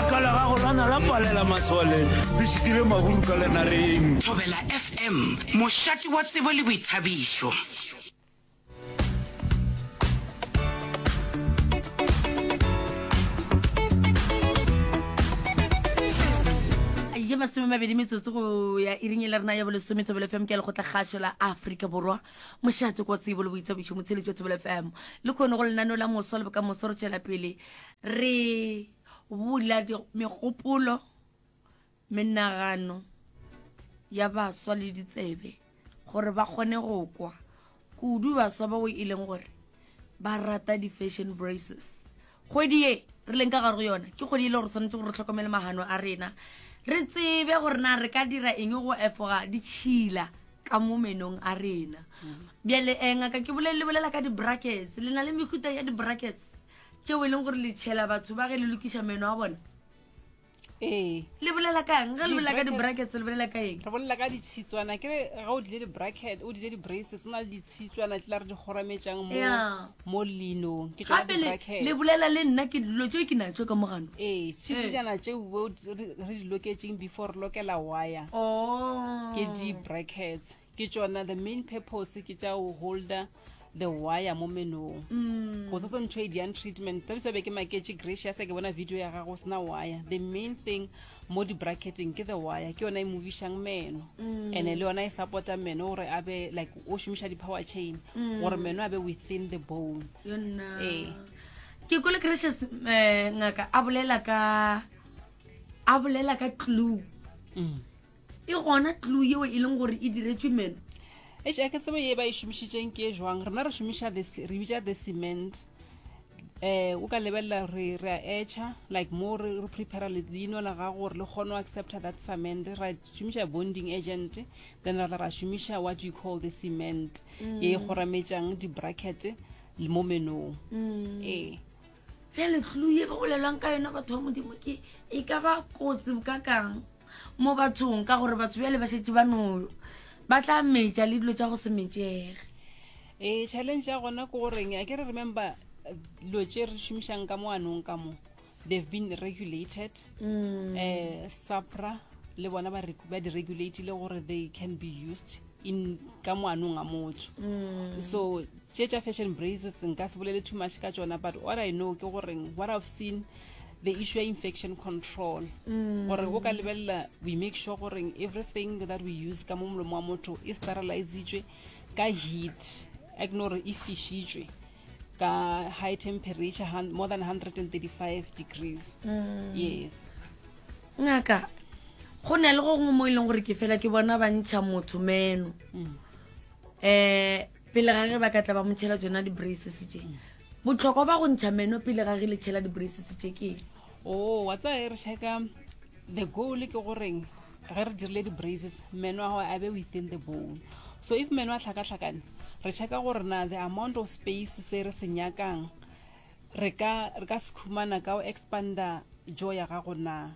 ka la gago lana la palela masole le šitile maburu ka lenareng thobela fm mošate wa tsebo le boithabišo je masome mabedi metsotso go ya iring e le rena ya bolesome thobelo fm ke ya lekgotla kgašo la aforika borwa mošate kwa tsebo le boithabišo motsheletšo thobelo fm le kgone go lenaneo la moso le bokamoso re tšwela pele re Bula megopolo, menagano ya baswa le ditsebe gore ba kgone go kwa, kudu baswa bao e leng gore ba rata di-fashion braces. Kgwedi ye re leng ka gare go yona ke kgwedi e le gore swanetše gore re tlhokomele magano a rena, re tsebe gore na re ka dira eng go efoga ditšhila ka mo menong a rena. Bjale um ngaka ke le bolelela ka di-brackets, le na le mehuta ya di-brackets? tšeo e leng gore le tšhela batho ba ge le lokiša meno a bona ee le bolela kang ge le bolela ka di-brackets le bolela ka eng re bolela ka ditshitswana ke re ge o dile di-bracket o dile di-braces o na le ditshitswana tse la re di kgorametsang mo Yeah. mo linong ke tsona gape le- di-brackets. le bolela le nna ke dilo tšeo ke natso ka mogano ee tshitswana tseo bo- re re di loketseng before re lokela wire o ke di-brackets Ke tšona the main purpose ke tša o holder the wire mo menong mm. go setsong ntho e diang treatment tse ditso be ke maketše gracia se ke bona video ya gago sena wire the main thing mo di-bracketing ke the wire ke yona e movišang meno mm. and-e le yona e supporta meno gore a be like o šomiša di-power chain mm. gore meno a be within the bone ee ke kole gracious um eh, ngaka a bolela ka a bolela ka clue mm. e gona tlou yeo e leng gore e diretšwe meno Eish, a ke tsebe ye ba e šomišitšeng ke e jwang rena re šomiša this re bitša the cement eh o ka lebelela re re a etšha like mo re re prepare le leino la gago gore le kgone go accepta that cement ra šomiša bonding agent then ra tla ra šomiša what you call the cement ye e kgorametšang di-bracket le mo menong ee bjale tlou ye ba bolelwang ka yona batho ba modimo ke e ka ba kotsi bokakang mo bathong ka gore batho bjale ba šetse ba no ba tla metša le dilo tša go se metšege ee challenge ya gona ke goreng a ke re remember dilo tše re šomišang ka mo anong ka mo they've been regulated um sapra le bona ba re- ba di-regulatile gore they can be used in ka moanong a motho mm. so tše tša fashion braces nka se bolele too much ka tsona but what i know ke goreng what i've seen the issue ya infection control mm. gore o ka lebelela we make sure goreng everything that we use ka mo molomo wa motho e sterilizitswe ka heat a ke no gore e fishitswe ka high temperature more than 135 degrees mm. yes ngaka go ne le go gongwe mo e leng gore ke fela ke bona ba ntšha motho meno um pele ga ge ba ka tla ba motšhela tsona di-braces tse mm. botlhokwa ba go ntšha meno pele ga ge le tšhela di-braces tse ke o oh, wa tsaya e re checka The goal ke goreng ge re dirile di-braises meno a gago a be within the bowl so if meno a tlhakatlhakane re checka gore na the amount of space se re se nyakang re ka re ka se khumana ka o expander jo ya gago na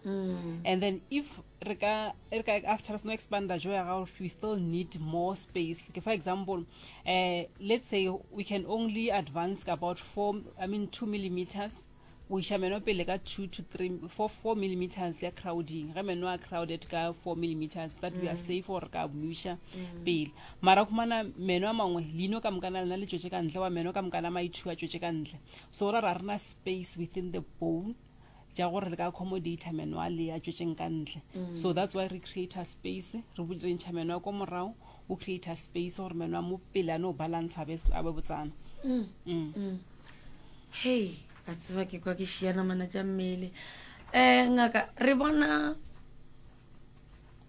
and then if re ka re ka after re seno expander jo ya gago we still need more space ke for example eh let's say we can only advance about four i mean two millimeters go iša meno pele ka 2 to 3 for 4 millimeters ya crowding ge meno a crowded ka 4 millimeters that we are mm. safe gore ka buša mm. pele mara khumana meno a mangwe leino ka mokana lena le tšwetše ka ntle wa meno ka mokana maithu a tšwetše ka ntle so ra ra rena space within the bone ja gore le ka accommodata meno a le a tšwetšeng ka ntle mm. so that's why re creator space re ntšha meno a ko morago o creator space gore meno a mo pele a no balantsha a be botsana mm. Mm. Mm. hei a tseba ke kwa ke šiana mana tša mmele um ngaka re bona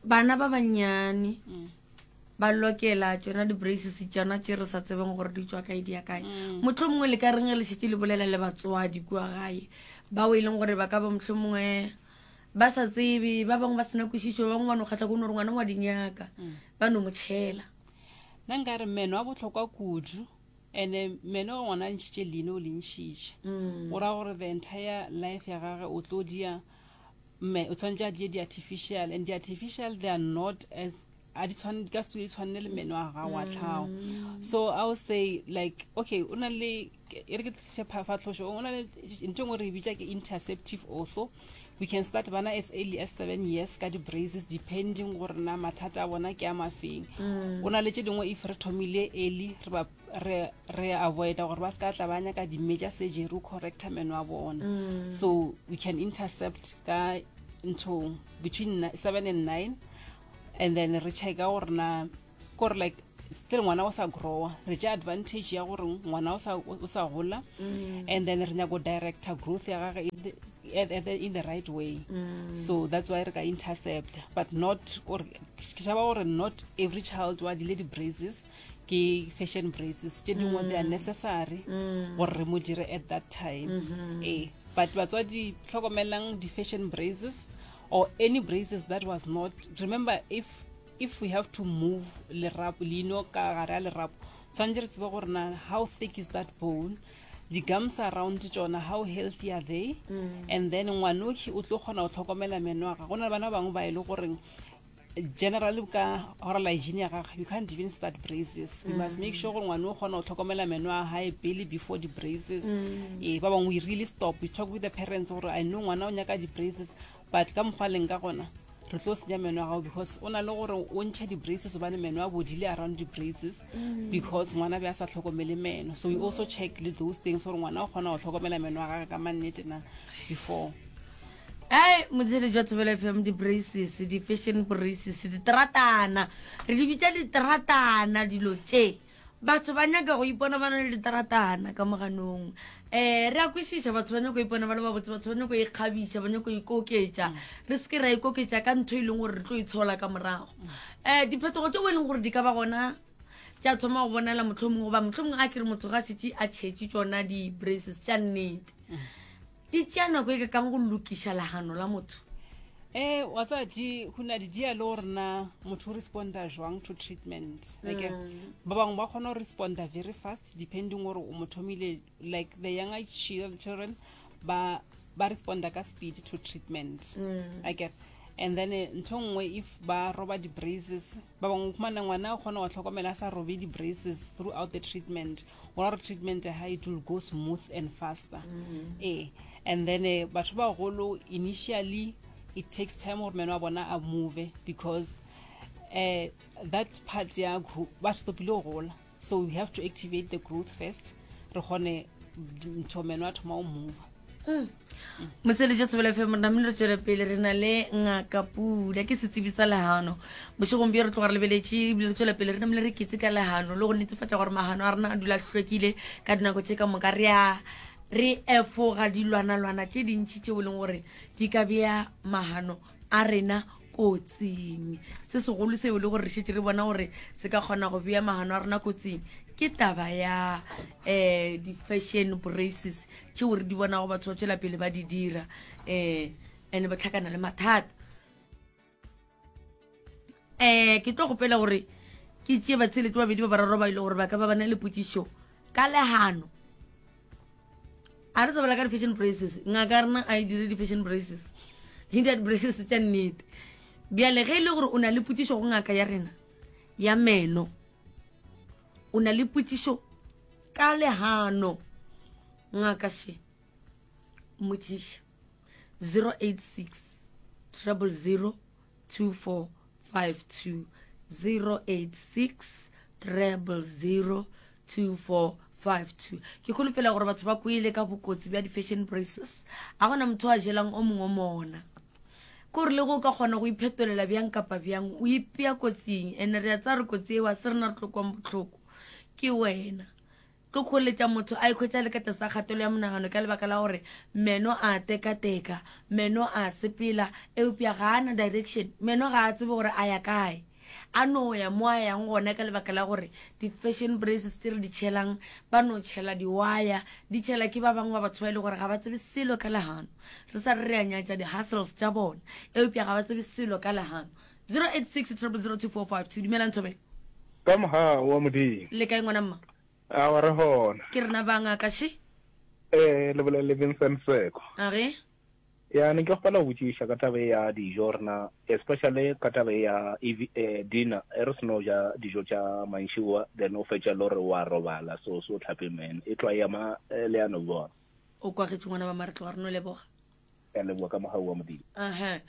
bana ba bannyane mm. ba lokela tsona di-braces tsona tse re sa tsebeng gore di tswa kae di ya kae mm. motlho mongwe le ka reng le šetse le bolela le batswadi kua gae bao e leng gore ba ka ba motlho mongwe Ba sa tsebe, ba bangwe ba sena kwešišo, ba bangwe ba no kgatla kono gore ngwana ngwa di nyaka, ba no mo tšhela. Nna nka re meno a bohlokwa kudu, ene meno ge ngwana a ntšhitše leino o le ntšhitše, go ra gore the entire life ya gage o tlo dia, o tshwanetše a die di-artificial, and di-artificial they are not as a di tshwane di ka se di tshwane le meno a gago a mm. tlhago so i will say like okay o na le e re ke tliše phafatlhošo o na le ntho engwe re e bitša ke interceptive ortho we can start bana as early as seven years ka di-braces depending gore na mathata a bona ke a mafeng mm. o na le tse dingwe if re thomile early re avoida gore ba se ka tla ba nyaka di-major surgery o correcta meno a bona mm. so we can intercept ka ntho between seven and nine and then re checka gore na kore like still ngwana o sa growa re ja advantage ya gore ngwana o sa gola mm. and then re nyako director growth ya gage in the right way mm. so that's why re ka intercept but not gore ke shaba gore not every child wa dile di-braces ke fashion braces tše dingwe mm. they are necessary mm. gore re mo dire at that time mm -hmm. e but batswadi tlhokomelang di-fashion braces or any braces that was not remember if if we have to move lerapo leino ka gare a lerapo tshwanetse re tsebe gore na how thick is that bone di-gums around tsona how healthy are they mm. and then ngwanoki o tlo kgona go tlhokomela meno a ga go na le bana ba bangwe ba e le goreng General ka oral hygiene ya gaga, you can't even start braces. You must make sure gore ngwane o kgona go tlhokomela meno a gae pele before di braces. Eh, ba bangwe we really stop. We talk with the parents gore I know ngwana o nyaka di braces, but ka mokgwa leng ka gona re tlo senya meno a gago because o na le gore o ntšhe di-braces obane meno a bodile around di-braces because ngwana be a sa tlhokomele meno so we also check le those things gore ngwana o kgona go tlhokomela meno a gage ka mannete na before Ai, motshele jwa Thobela FM, di-braces, di-fashion braces, diteratana. Re di bitša diteratana dilo tše. Batho ba nyaka go ipona ba na le diteratana ka moganong. Eh, re a kwešiša batho ba nyaka go ipona ba le babotse, batho ba nyaka go ikgabiša, ba nyaka go ikoketša. Re se ke ra ikoketša ka ntho e leng gore re tlo e tshola ka morago. Eh, diphetogo tšeo e leng gore di ka ba gona tša thoma go bonala mohlomong goba mohlomong a ke re motho ga šetše a tšhetše tšona di-braces tša nnete Di tšea nako e ka kang go lokiša lagano la motho? E, wa tsaya di go na di dia le gore na motho o responda jwang to treatment like mm. ba bangwe ba kgona go responda very fast depending gore o mo thomile like the younger children ba ba responda ka speed to treatment mm. i get and then eh, ntho nngwe if ba roba di-braises Ba bangwe o khumana ngwana o kgona go tlhokomela a sa robe di-braces throughout the treatment gona gore treatment ya gae it will go smooth and faster ee and then eh, batho ba bagolo initially it takes time gore meno a bona a move because eh, that part ya khu- ba stopile go gola so we have to activate the growth first re kgone ntho meno a thoma o mova mm. motsweletse tshobela fe morena mne re tswele pele re na le ngaka pula ke setsibi sa lehano bošegong bjo re tloga re lebeletse ebile re tswela pele re namele re ketse ka lehano le go netefatsa gore magano a rena a dula hlwekile ka dinako tse ka moka re a re efoga dilwana-lwana tše dintšhi tšeo e leng gore di ka bea magano a rena kotsing se segolo seo le gore re šetse re bona gore se ka kgona go bea magano a rena kotsing ke taba ya um di-fashion braces tšeo re di bonago batho ba tswela pele ba di dira um and-e ba tlhakana le mathata um ke tlo gopela gore ke tšee batshelete babedi ba bararo ba ile gore ba ka ba bana le potsišo ka legano a re tsebela ka di-fashion braces ngaka ya rena a e dire di-fashion braces e dia di-braces tša nnete bjale ge e le gore o na le potsišo go ngaka ya rena ya meno o na le potsišo ka legano ngaka she mmotsiša 086 triple zero 2452 ke kholofela gore batho ba kwele ka bokotsi bja di-fashion braces a gona motho a jelang o mongwe mona ke gore le go o ka kgona go iphetolela bjang kapa bjang o ipea kotsing and-e re a tsa re kotsi eo a se rena re tlokwang botlhoko ke wena Go kgoeletša motho a ikhwetša a le ka tlase ga kgatelo ya monagano ka lebaka la gore meno a a tekateka, meno a a sepela, eupša ga a na direction, meno ga a tsebe gore a ya kae, a no ya mo a yang gona ka lebaka la gore di-fashion braces tše re di tšhelang, ba no tšhela diwaya, di tšhela ke ba bangwe ba batho ba e lego gore ga ba tsebe selo ka lehano. Re sa re re a nyatša di-hustles tša bona, eupša ga ba tsebe selo ka lehano. 086 dumelang thobela ka mohau wa modimo le kae ngwana mma a wa re gona ke rena banga ka she eh le bolele Vincent Seko a ge ya ne ke kgopela go botšiša ka taba ya dijo rena especially ka taba ya eh, dinner e re seno ja dijo tša manšiwa then o fetša le gore wa robala so so tlhape men e tlwa ema eh, leano bona o kwagetše ngwana ba maretlo wa reno leboga ka leboa ka mogau wa modimo aha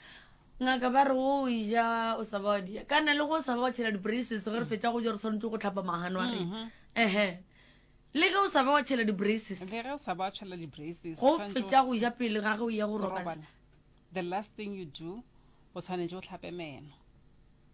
ngaka ba re o ja o sa ba wa dia ka na le go sa ba wa tšhela di-braces ge re fetša go ja re tshwanetse go tlhapa magano a rena mhm. ehe le ge o sa ba wa tšhela di-braces le ge o sa ba wa tšhela di-braces go fetša go ja pele ga ge o ya go robala the last thing you do o tshwanetse o tlhape meno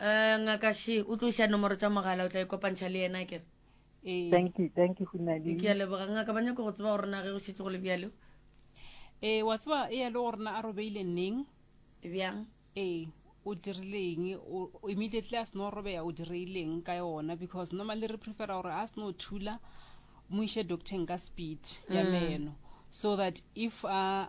Uh, ngaka she o tlo iša nomoro tša mogala o tla ikopantšha le yena kere ee. thank you thank you gonadi ke a leboga ngaka ba nyako go tseba gore na ge go šetse go le bjalo ee wa tseba e ya le gore na a robeile neng bjang ee o dirileng immediately a seno robeya o direileng ka yona because normally re prefera gore a seno thula mo iše doctorng ka speed ya mm. meno so that if a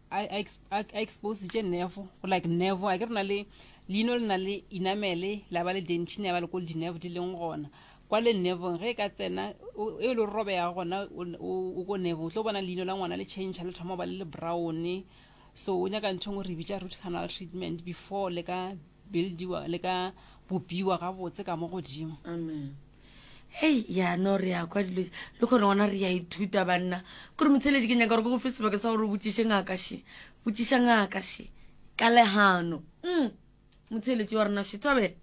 a a ex- a- a expositše nervo go like nervo a ke re na le leino le na le inamele la ba le dentine ya ba le ko le dinervo di leng gona kwa le nervong ge e ka tsena o- e le robega gona o n- o o ko nervo o tlo bona leino la ngwana le change le thoma go ba le le browne so o nyaka ntho e ngwe re bitša root canal treatment before le ka buildiwa le ka bopiwa gabotse ka mo godimo amen hei yano re ya kwa dilo le kgone gona re ya ithuta banna kore motsheledi ke nyaka gore ke go fe sebaka sa gore o botsiše ngaka she botsiša ngaka she ka legano mm. motsheletsi wa rena she tobela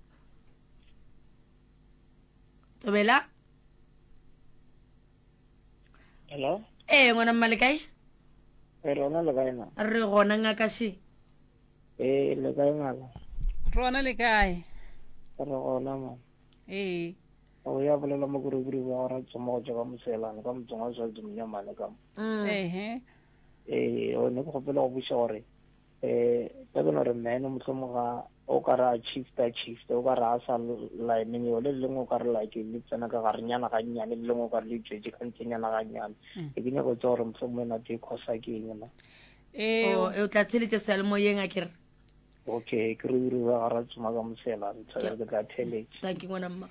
tobela hello ee eh, ngwana mmale kae eh, rona le kae na re gona ngaka she ee eh, le kae ngaka rona le kae re gona ma ee o ya bolela mo kurukuru ba gora tsoma go tšwa ka moselane ka motseng wa swazi monyamane ka mo mm. ee ee o ne ke gopela go buša gore um ka beno re mene motlhomo ga o ka ra chifta chifta o ka ra a sa line yo le lengwe o ka re like le tsena ka gare nyana ga nnyane le lengwe o ka re le tswetse ka ntse nyana ga nnyane mm. e ke nyako tsa gore motlhomo e nate e khosa ke eng na ee oh, o tla tsheletse sealemoyeng a kere okay ke re uri ba gara tsoma ka mosela re tshwere ke tla theletše thank you ngwana mma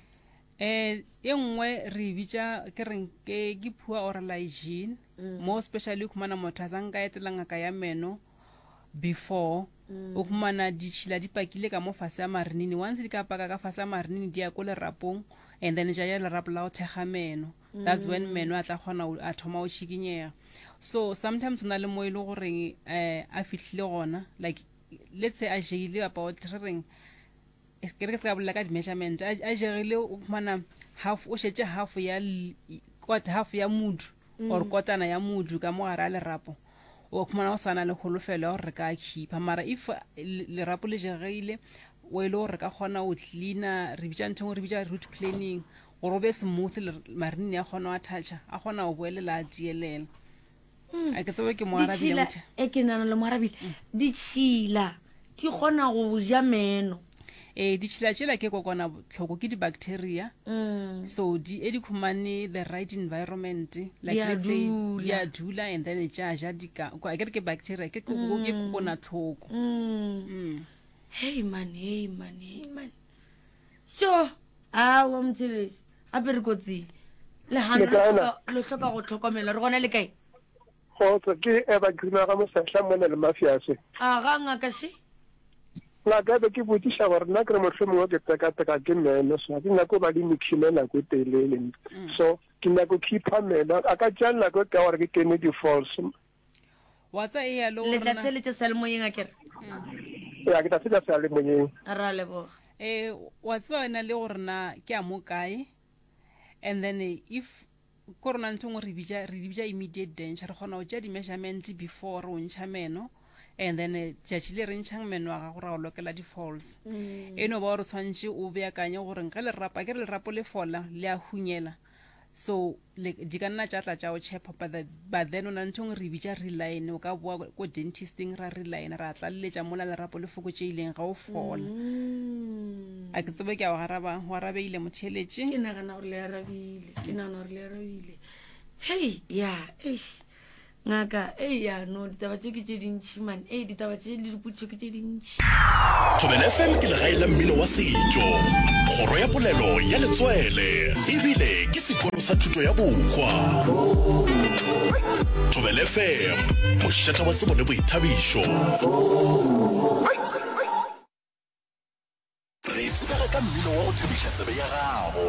eh e nngwe re bitsa ke reng ke ke phua or lygene mm. mo especially khumana motho a tsang ka etela ngaka ya meno before mm. o khumana ditšhila di pakile ka mo fase ya marinini once di ka paka ka fase ya marinini di ya ko lerapong and then ja ya lerapo la go thekga meno that's when mm. meno a tla kgona a thoma o šikinyega so sometimes o na le mo e le goreng um a fitlhile gona like let's say a jegile about re reng es- ke re ke se ka bolela ka di-measurement a a jegile o khumana half o šetše half ya l- i- kota half ya mudu or kotana ya mudu ka mo gare a lerapo o khumana go sana le kholofelo ya gore re ka a khipha mara if uh, le- lerapo le jegile o e le gore re ka kgona go cleana re bitša ntho engwe re bitša root planning gore o be smooth le- marinini a kgona go attacga a kgona go boelela a tielela Hmm. a ke tsebe ke moarabile e ke nana le moarabile ditšhila di kgona go ja meno ee ditšhila tšela ke kokwana tlhoko ke di-bacteria hmm. so di e di khumane the right environment like let's say di a dula and then tša ja dika a kere ke bacteria ke kokona hmm. tlhoko hey man hey man hey man so awa mothelesi gape re kotsing legano lo Lekae na? hloka- lo hloka go tlhokomelwa re gona le kae kgotsa ke eba grima ga mosehla mo ne le mafiase a ga ngaka she ngaka ebe ke botšiša gore nna ke re mohlho mongwe ke tekateka ke meno so ga ke nyako ba le mekhime nako e telele so ke nyako khipha meno a ka tšea nako e ka gore ke kene di-false wa tsa e ya le letla rona tsele tša seyalemoyeng a kere ya ke tla tsebja se a le moyeng ra leboga eh wa tseba wena le gore na ke a mo kae and then eh, if ko rona ntho ngwe re bitša re di bitša immediate danger re kgona go tšea di-measurement before re o ntšha meno and then eh, tšatši le re ntšhang meno a gago ra o lokela di-falls e no ba gore tshwanetse o beakanye gore ge lerapo ke re lerapo le fola le a hunyela so like di ka nna tša tla tša o chepa but the- but then o na le nthong re e bitša reline o ka boa ko- ko dentisting ra reline ra tlaleletša mola lerapo le fokotšeileng ga o fola Mm. a ke tsebe ke a o garaba go arabeile motheletše ke nagana gore le arabile ke nagana gore le arabile hei ya eish Ngaka, Ei ya no, ditaba tše ke tše dintši man, ei ditaba tše le dipotšišo ke tše dintši. Thobela FM ke legae la mmino wa setšo, kgoro ya polelo ya letswele e bile ke sekolo sa thuto ya bokgwa. Thobela FM, mošata wa tsebo le boithabišo. Re tsebega ka mmino wa go thabiša tsebe ya gago.